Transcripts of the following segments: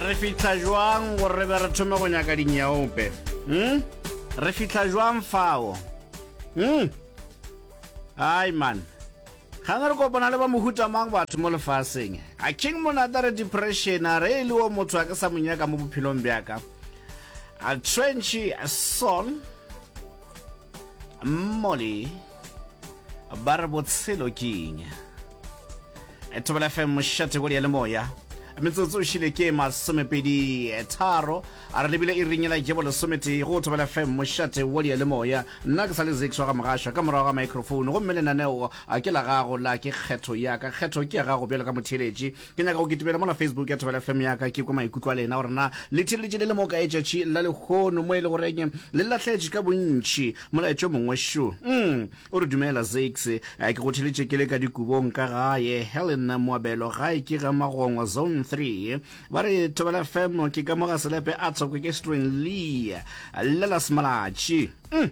Re fihla jwang gore re be re thome go nyaka dinyeope? Hm? Re fihla jwang fao? Hm? Hai man. Ga ne re kopana le ba mohuta mang batho mo lefaseng? A king monata re depression a re e le o motho a ke sa mo nyaka mo bophelong bjaka. A trench a son. Molly. ba re botshelo ke eng e thobela fm mošate go le moya metsotso o šile ke masomepedi tharo a re lebile e rinyela jebo lesometee go thobela fm mošate wo le le moya nna ke sa le zix wa ga mogašwa ka morago ga microphone gomme lenaneo a ke la gago la ke kgetho ya ka kgetho ke ya gago bjalo ka motheletši Ke nyaka go kitimela mola Facebook ya Thobela FM ya ka ke kwe maikutlo a lena gore na le thireletše le le mo ka etšatši la lehono mo e le goreng le lahletše ka bontši molaetšo mongwe šo mm. o re dumela Zakes eh, ke go theletše ke le ka dikubong ka gae Helen Moabelo gae ke ga Magongwa zone 3 ba re Thobela FM ke ka moga selepe a thoko ke String Lee lela semalatši mm.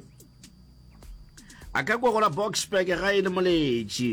a ka kwa gola Boxburg ga e le moletši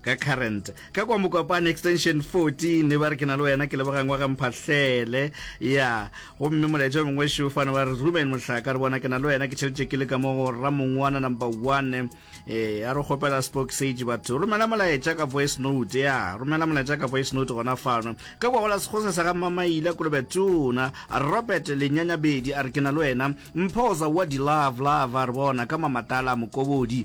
ka current ka kwa mokopane extension 14 e ba re ke na le wena ke lebogangwa ga mphahlele ya gomme molaetša mongwe šo fane ba re rumen mohlaka re bona ke na le wena ke tšheletše ke le ka mo go ramongwana number one e a re kgopela spoke sage batho romela molaetša ka voice note ya romela molaetša ka voice note gona fano ka kwa gola sekgose sa ga mamaile kolobe tona robert lenyanyabedi a re ke na le wena mphoza wa di love love a re bona ka mamatala mokobodi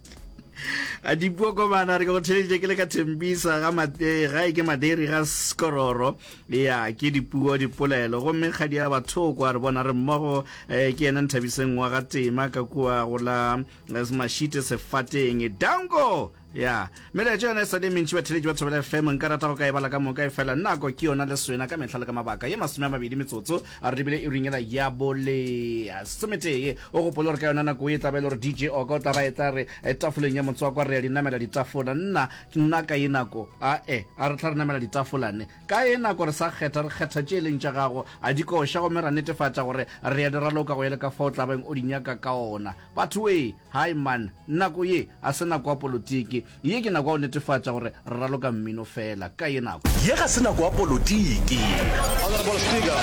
a dipuo kobana re ke go theletše ke le ka thembisa ga eh, ga e ke maderi ga skororo ya ke dipuo dipolelo gomme kgadi ya bathoko a re bona re mmogo eh, ke ena nthabiseng wa ga tema ka kua go la eh, mashite sefateng danko ya meletso yone e sa le mentši batheletši ba thobela fm nka rata go ka e bala ka moka e fela nako ke yona le swena ka mehla le ka mabaka ye masome a mabedi metsotso a re dibile iring ela ya bole sometee o gopole gore ka yona nako e tlabe e le gore dj oka o tla ba e tla re eh, tafoleng ya motswakwa re ya di namela ditafola nna nna ka ye nako a e eh, a re tla re namela ditafolane ka ye nako re sa kgetha re kgetha tše e leng tša gago a di koša gomme ra netefatša gore re ya di raloka go ele ka fa o tlabeng o di nyaka ka ona batho ee hai man nako ye a se nako ya polotiki Ye ke nako ya go netefatša gore re raloka mmino feela. Ka ye nako. Ye ga se nako ya polotiki. Honourable Speaker,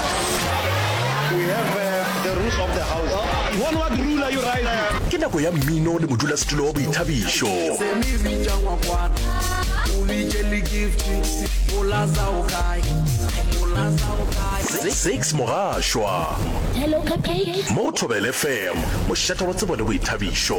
we have uh, the rules of the House. You want what ruler you write? Ke nako ya mmino le modulasetulo wa boithabišo. Se mi bitša ngwakwana, o bitše le gift, o laza o kae, o laza o kae. Six Mogashwa. Hello, Cupcake. Mo go Thobel FM, mošate wa tsebo le boithabišo.